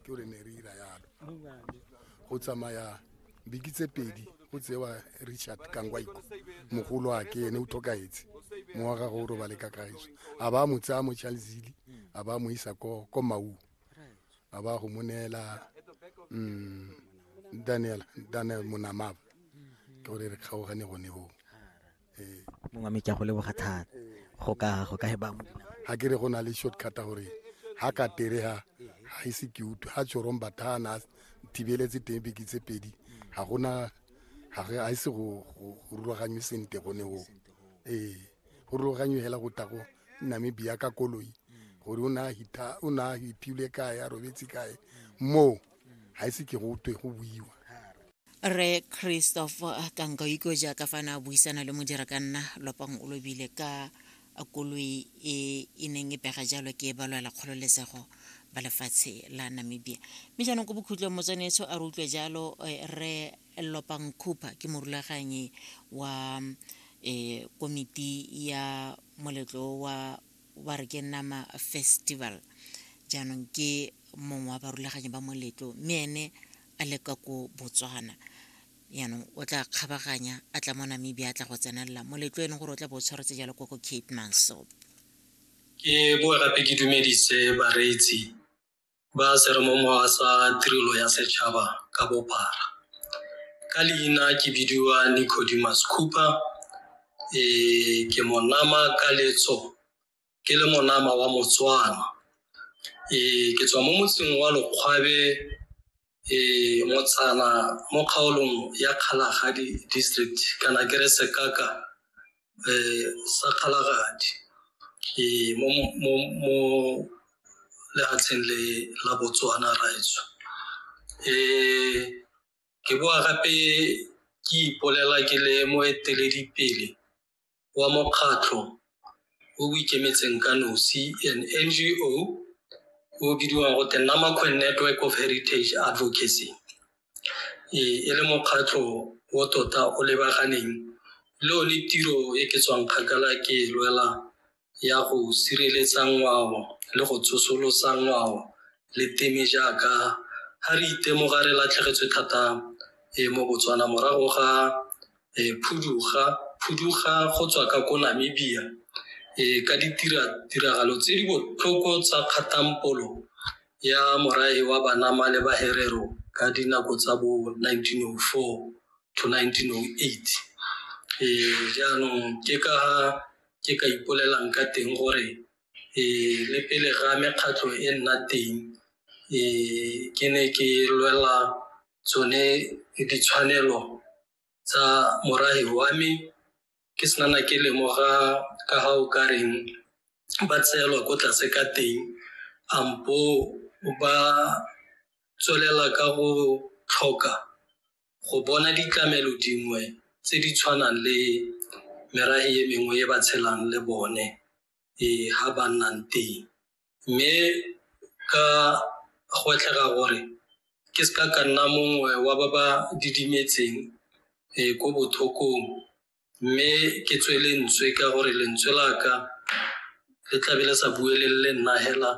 ke re ne re ira yalo go tsamaya biki tse pedi go tsewa richard kangwaiko mogolo a ke ene o tlhokaetse mo wa gage o robale ka kaeso a ba mo tsaya mo chalzili a ba mo isa ko ko mau a ba go mo neela mm, daniel daniel monamaba ke gore re kgaogane gone goo mongwe mme ke a go leboga thata go ka go ka ba ga ke re go na le shortcut gore ha ka tere ha ha ise ke utlwe ha tshorong bathana thibeletse teng beke tse pedi ga gona ga re a ise go rulaganywe sente gone go ee go rulaganywe hela go tago namibia ka koloi gore o na hita o na hiphile kae a robetse kae moo ga ise ke go twe go buiwa re christopher kankaiko jaaka fa na buisana le modira ka nna lopang o lobile ka koloi e e neng e pega jalo ke e balwela kgololesego ba lefatshe la namibia mme jaanong ko bokhutlong motswanetso a re utlwe jalo eh, re lopang cooper ke morulaganyi wa um komiti ya moletlo wa ba re ke nama festival jaanong ke mongwe wa barulaganyi ba moletlo mme ene a le ka ko botswana yaanong o tla kgabaganya a tla mo namibia a tla go tsenelela moletlo e leng gore o tla bo o tshwaretse jalo ko ko cape manso ke boa gape ke dumedise bareetsi ba seremomowa sa tirelo ya setšhaba ka bophara ka leina ke bidiwa nicodemus cooper e ke monama ka letso ke le monama wa motswana ee ke tswa mo motseng wa lokgwabe ee motsana mo kgaolong ya kgalagadi district kana ke re sekaka ee sa kgalagadi ee mo mo mo lehatsheng le la botswana raetsho ee ke boa gape ke ipolela ke le moeteledipele wa mokgatlho o o ikemetseng ka nosi an NGO o o bidiwang go te Namakwe Network of Heritage Advocacy e e le mokgatlho o tota o lebaganeng le one tiro e ke tswang kgakala ke e lwela ya go sireletsa ngwao le go tsosolosa ngwao le teme jaaka ha re itemoga re latlhegetswe thata e mo Botswana morago ga e phuduga phuduga go tswa ka ko Namibia e ka ditira tiragalo tse di botlhoko tsa kgatampolo ya morae wa banama le baherero ka dinako tsa bo 1904 to 1908 e jaanong ke ka ke ka ipolelang ka teng gore um le pele ga mekgatlho e nna teng um ke ne ke lwela tsone ditshwanelo tsa morahi wa me ke senana ke lemoga ka ga o ka reng ba tseelwa ko tlase ka teng ampo ba tswelela ka go tlhoka go bona ditlamelo dingwe tse di tshwanang le merafe e mengwe e ba tshelang le bone ee ha ba nnang teng mme ka gwetlhega gore ke se ka ka nna mongwe wa ba ba didimetseng ee ko bothokong mme ke tswe lentswe ka gore lentswe la ka le tlabe le sa buelelele nna hela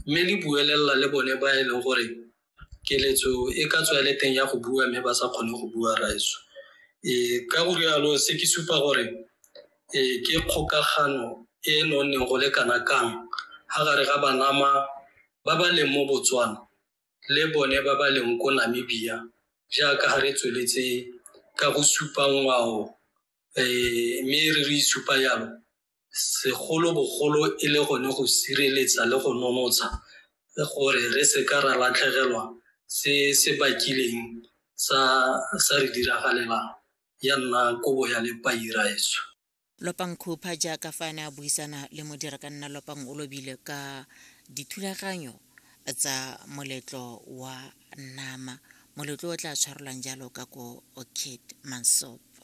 mme le buelelela le bone ba e leng gore keletso e ka tswa le teng ya go bua mme ba sa kgone go bua raeso um ka go rialo se ke supa gore um ke kgokagano e e nonneng go le kana kang ga gare ga banama ba ba leng mo botswana le bone ba ba leng ko Namibia jaaka ga re tsweletse ka go supa ngwao um mme re re isupa yalo segolobogolo e le gone go sireletsa le go nonotsha gore re seka ra latlhegelwa se se bakileng sa sa re diragalelang ya nna kobo ya lepairaetso. Lopang Khupa jaaka fa a ne a buisana le modirakanna Lopang Olobile ka dithulaganyo tsa moletlo wa nama moletlo o tla tshwarelwang jalo ka ko Kid Mansopo.